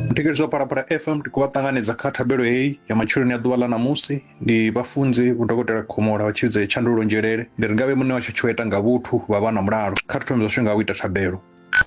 muthetshelesi wa parapara fm ndi kuvha ṱanganedza kha thabelo heyi ya matsheloni a ḓuvha ḽa ṋamusi ndi vhafunzi vhudokotela khomola vha tshivhidzo ya tshandululo nzhelele ndi ri ngavhe muṋe washu tshoeta nga vhuthu vha vha na mulalo kha thithomi zwashu nga u ita thabelo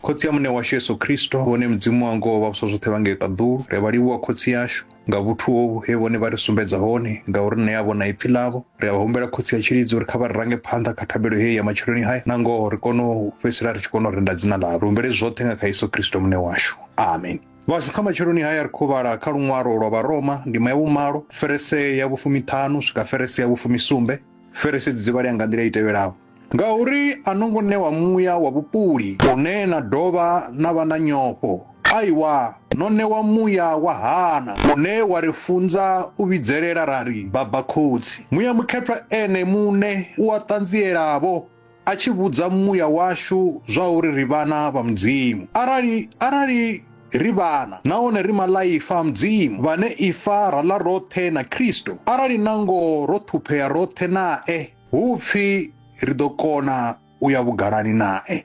khotsi ya muṋe washu yesu kristo vhone mudzimu wa ngoho vha vhusa zwoṱhe vha ngei ṱaḓulu ri vha livhuwa khotsi yashu nga vhuthu hovhu he vhone vha ri sumbedza hone ngauri nṋe a vhona ipfi ḽavho ri a vha humbela khotsi ya tshilidzi uri kha vha ri range phanḓa kha thabelo heyi ya matshiloni hai na ngoho ri kone u fhedzisela ri tshi kona u renda dzina ḽavho ri humbele zwoṱhe nga kha yesu kristo muṋe washu amen vhashu kha matshiloni haya ri khou vhala kha luṅwalo lwa vharoma ndima ya vhumalo ferese ya vhufumiṱhanu swika ferese ya vhufumisumbe ferese dzi dzivhalea nga nḓila i tevhelaho Ngauri a no ngo ṋewa muya wa vhupuli une na dovha na vha na nyofho. Aiwa, no ṋewa muya wa hana, une wa ri funza u vhidzelela ra ri, Baba, Khotsi! Muya Mukhethwa Ene muṋe u a ṱanziela-vho, a tshi vhudza muya washu zwauri ri vhana vha Mudzimu. Arali, arali ri vhana, nahone ri maḽaifa a Mudzimu, vhane ifa ra ḽa roṱhe na Kristo, arali na ngoho ro ṱhuphea roṱhe nae, Hu pfi ri ḓo kona u ya vhugalani nae.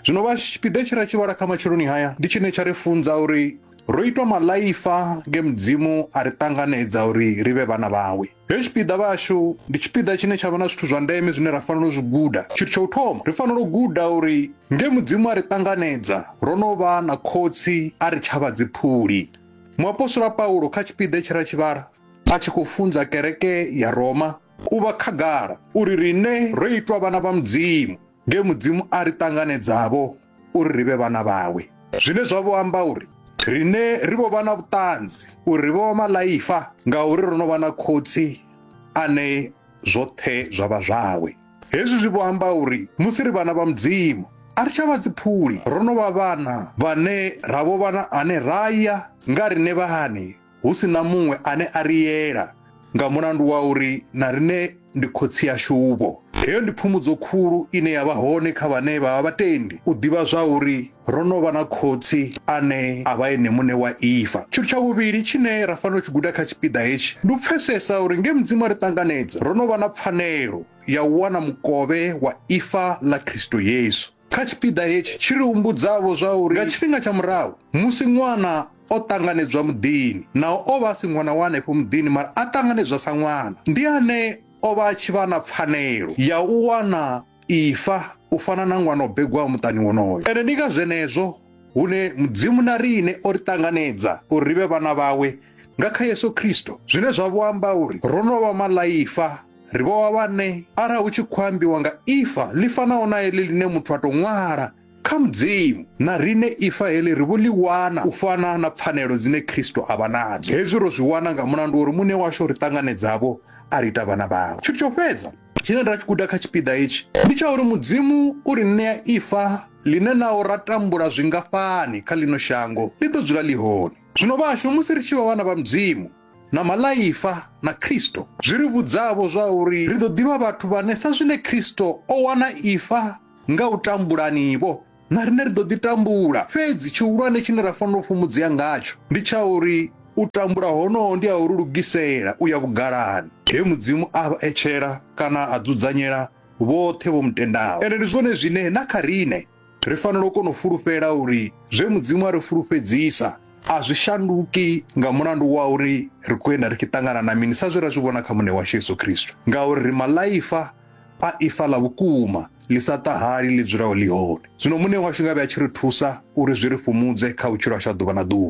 Zwino vha tshipiḓa tshe ra tshi vhala kha matsheloni haya ndi tshine tsha ri funza uri ro itwa maḽaifa nge Mudzimu a ri ṱanganedza uri ri vhe vhana vhawe. Hetshi tshipiḓa vhashu ndi tshipiḓa tshine tsha vha na zwithu zwa ndeme zwine ra fanela u zwi guda. Tshithu tsha u thoma, ri fanela u guda uri nge Mudzimu a ri ṱanganedza ro no vha na Khotsi a ri tsha vha dziphuli. Muapostola Paulo kha tshipiḓa tshe ra tshi vhala a tshi khou funza kereke ya Roma, u vha khagala uri riṋe ro itwa vhana vha Mudzimu nge Mudzimu a ri ṱanganedzavho uri ri vhe vhana vhawe, zwine zwa vho amba uri riṋe ri vho vha na vhuṱanzi uri ri vho vha maḽaifa ngauri ro no vha na Khotsi ane zwoṱhe zwa vha zwawe. Hezwi zwi vho amba uri musi ri vhana vha Mudzimu, a ri tsha vha dziphuli, ro no vha vhana vhane ra vho vha na ane ra ya nga riṋe vhaṋe. hu si na muṅwe ane a ri yela, nga mulandu wa uri na riṋe ndi khotsi ashu-vho. Heyo ndi phumudzo khulu ine ya vha hone kha vhane vha vha vhatendi, u ḓivha zwauri ro no vha na Khotsi ane a vha Ene muṋe wa ifa. Tshithu tsha vhuvhili tshine ra fanela u tshi guda kha tshipiḓa hetshi ndi u pfesesa uri nge Mudzimu a ri ṱanganedza, ro no vha na pfanelo ya u wana mukovhe wa ifa ḽa Kristo Yesu. Kha tshipiḓa hetshi, tshi ri humbudza-vho zwa uri nga tshifhinga tsha murahu, musi ṅwana o ṱanganedzwa muḓini, naho o vha a si ṅwana wa henefho muḓini mara a ṱanganedzwa sa ṅwana, ndi ane o vha a tshi vha na pfanelo ya u wana ifa u fana na ṅwana o begwaho muṱani wonoyo. Ende ndi nga zwenezwo hune Mudzimu na riṋe o ri ṱanganedza uri ri vhe vhana vhawe nga kha Yesu Kristo, zwine zwa vho amba uri ro no vha maḽaifa. ri vho wa vhane arali hu tshi khou ambiwa nga ifa ḽi fanaho na heḽi ḽine muthu a tou ṅwala kha mudzimu na rine ifa heḽi ri vho ḽi wana u fana na pfanelo dzine khristo a vha nadzo hezwi ro zwi wana nga mulandu uri muṋe washu o ri ṱanganedzavho a ri ita vhana vhawe tshithu tsho fhedza tshine ra tshi guda kha tshipiḓa hetshi ndi tsha uri mudzimu u ri ṋea ifa ḽine naho ra tambula zwingafhani kha ḽino shango ḽi ḓo dzula ḽi hone zwino vhashu musi ri tshi vha vhana vha mudzimu na malaifa na Kristo zwi ri vhudzavho zwa uri ri ḓo ḓivha vhathu vhane sa zwine Kristo o wana ifa nga u tambulanivho na rine ri ḓo ḓi tambula fhedzi tshihulwane tshine ra fanela u fhumudzea ngatsho ndi tsha uri u tambula honoho ndi a uri lugisela u ya vhugalani he mudzimu a vha etshela kana a dzudzanyela vhoṱhe vho mutendaho ende ndi zwone zwine na kha rine Ri fanela u kona u fulufhela uri zwe Mudzimu a ri fulufhedzisa a zwi shanduki nga mulandu wa uri ri khou enda ri tshi ṱangana na mini sa zwe ra zwi vhona kha Muṋe washu Yesu Kristo, ngauri ri maḽaifa a ifa ḽa vhukuma ḽi sa ṱahali ḽi dzulaho ḽi hone. Zwino Muṋe washu ngavhe a tshi ri thusa uri zwi ri fhumudze kha vhutshilo hashu ha ḓuvha na ḓuvha.